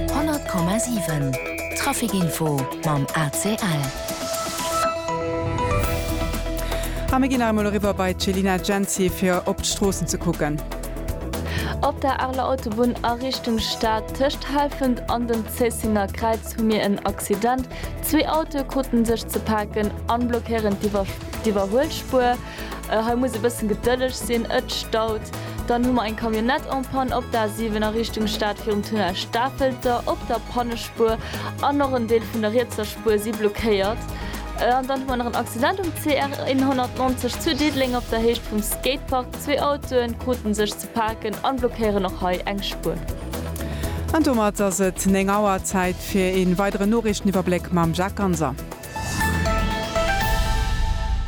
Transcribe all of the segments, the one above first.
100,7 Trafic Info mam ACL. A mir ginn nach emol eriwwer bei d'Céline Genzi fir op d'Stroossen ze kucken. Op der Arler Autobunn a Richtung Stad, tëscht Helfent an dem Zéissener Kräiz hu mir en Accident. Zwee Autoe kruten sech ze paken an blockéieren d'Iwwerhuelspuer. Hei muss e bëssen gedëlleg sinn, et staut. Dann hu mer eng Camionnette en panne op der A7 a Richtung Stad virum Tunnel Stafelter op der Pannespuer an och en Deel vun der rietser Spuer si blockéiert. An dann hu mer nach en Accident um CR 190 zu Diddeleng op der Héicht vum Skatepark. Zwee Autoe krute sech ze paken a blockéieren och hei eng Spuer. An domat ass et 9 Auer. Zäit fir ee weideren Noriichteniwwerbléck mam Jacques Ganser.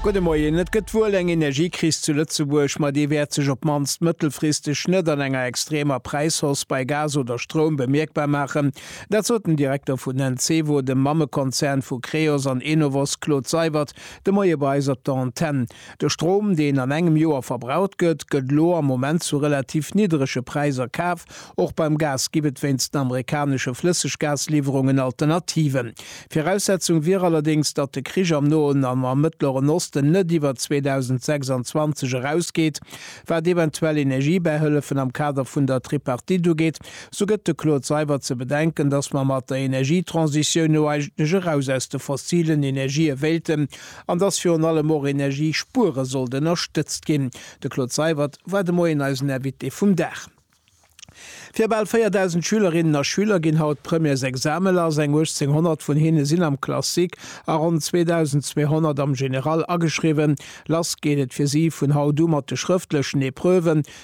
Gudde Moien. Et gëtt wuel eng Energiekris zu Lëtzebuerg, ma déi wäert sech op d'mannst mëttelfristeg net an enger extremer Präishausse bei Gas oder Stroum bemierkbar maachen. Dat sot den Direkter vun Encevo, dem Mammekonzern vu Creos an Enovos, Claude Seibert, de Moie bei eis op der Antenn. De Strom, deen an engem Joer verbraucht gëtt, gëtt elo am Moment zu relativ nidderege Präiser kaf. Och beim Gas gib et wéinst den amerikanesche Flësseggasliwwerungen Alternativen. Viraussetzung wier allerdéngs, datt de Krich am Noen an am Mëttleren Osten net iwwer 2026 erausgeet. Wat eventuell Energiebäihëllefen am Kader vun der Tripartite ugeet, sou gëtt de Claude Seibert ze bedenken, datt mer mat der Energietransitioun no eigentlech eraus aus de fossilen Energië wéilten, an dass virun allem och Energiespuere sollt ënnerstëtzt ginn. De Claude Seywert war de Moien eisen Invité vum Dag. Fir bal 4.000 Schülerinnen a Schüler ginn haut d'Premièresexame lass. Eng 1.800 vun hinne sinn am Classique a ronn 2.200 am General ageschriwwen. Lass geet et fir si vun haut u mat de schrëftlechen Epreuven,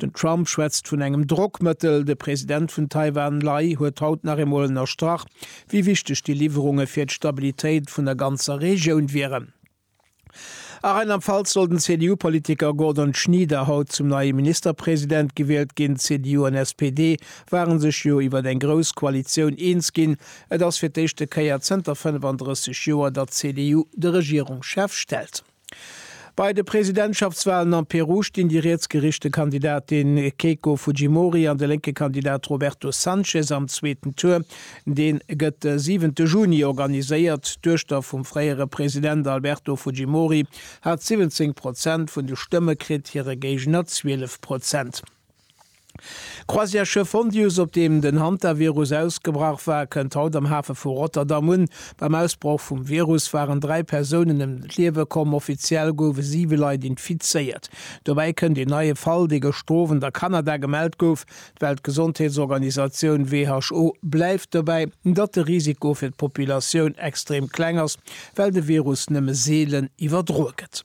Den Trump schwätzt vun engem Drockmëttel. De President vun Taiwan Lai huet haut nach eemol ënnerstrach, wéi wichteg déi Liwwerunge fir d'Stabilitéit vun der ganzer Regioun wieren. A Rheinland-Pfalz soll den CDU-Politiker Gordon Schnieder haut zum neie Ministerpresident gewielt ginn. CDU an SPD ware sech jo iwwer eng grouss Koalitioun eens ginn. Et ass fir d'éischte Kéier zënter 35 Joer, datt d'CDU de Regierungschef stellt. Bei de Presidentschaftswalen am Peru stinn déi rietsgeriichte Kandidatin Keiko Fujimori an de lénke Kandidat Roberto Sanchez am zweeten Tour. Dee gëtt de siwente Juni organiséiert. D'Duechter vum fréiere President Alberto Fujimori hat 17 Prozent vun de Stëmme kritt, hire Géigner 12 Prozent. D'Croisièreschiff Hondius, op deem den Hantavirus ausgebrach war, kënnt haut am Hafe vu Rotterdam un. Beim Ausbroch vum Virus waren dräi Persounen ëm d'Liewe komm. Offiziell goufe siwe Leit infizéiert. Dobäi kënnt een neie Fall, dee gëschter Owend a Kanada gemellt gouf. D'Weltgesondheetsorganisatioun who bleift dobäi, datt de Risiko fir d'Populatioun extrem kleng ass, well de Virus nëmme seelen iwwerdroe gëtt.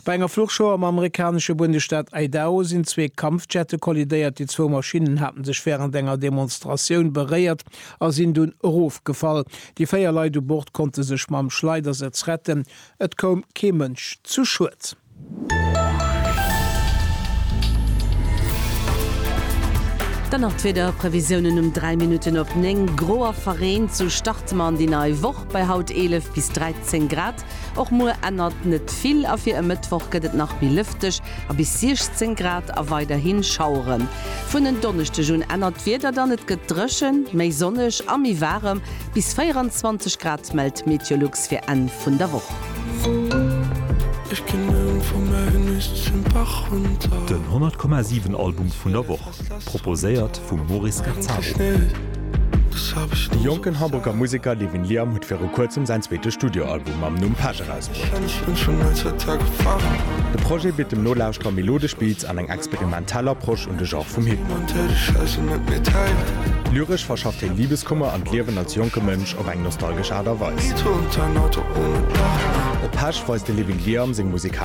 Bei enger Fluchshow am amerikanesche Bundesstaat Idaho sinn zwee Kampfjette kollidéiert. Déi zwou Maschinnen hate sech wärend enger Demonstratioun beréiert a sinn dunn erofgefall. Déi véier Leit u Bord konnte sech mam Schleidersëtz retten. Et koum kee Mënsch zu Schued. Dann nach d'Wiederprevisiounen um 3 Minutten op 9, Gro a verreent. Sou starte mer an déi nei Woch bei haut 11 bis 13 Grad. Och muer ännert net vill a fir e Mëttwoch gëtt et nach méi lëfteg a bis 16 Grad a weiderhi Schaueren. Vun en Donneschdeg un ännert d'Wieder dann, et gëtt dréchen, méi sonneg a méi waarem, bis 24 Grad mellt d'Meteolux fir Enn vun der Woch. Den 100,7 Album vun der Woch. Proposéiert vum Maurice Gazzaro. De jonken Hamburger Museker Levin Liam huet viru kuerzem säin zweete Studioalbum mam Numm Page erausbruecht. De Projet bitt dem Nolauschterer melodesch Beats an eng experimentell Approche un de Genre vum Hip-Hop. Lyresch verschafft hien Libeskummer an d'Liewen als jonke Mënsch op eng nostalgesch Aart a Weis. Op Page weist de Levin Liam seng musikalesch.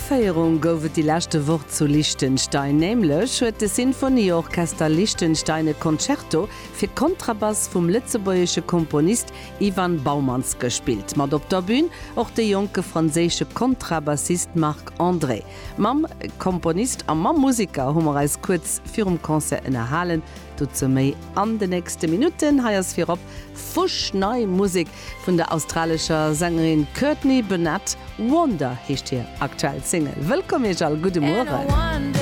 Féierung gouf et déi leschte Woch zu Liechtenstein. Nämlech huet de Sinfonieorchester Liechtenstein e Concerto fir Kontrabass vum lëtzebuergesche Komponist Ivan Baumanns gespillt. Mat op der Bün och de jonke franséische Kontrabassist Marc André. Mam Komponist a mam Museker hu mer eis kuerz virum Concert ënnerhalen. Dozou méi an de nächste Minutten. Hei ass virop fuschnei Musek Vun der australescher Sängerin Courtney Burnett, Wonder heescht hir aktuell Single. Wëllkomm Iech all, gudde Mueren.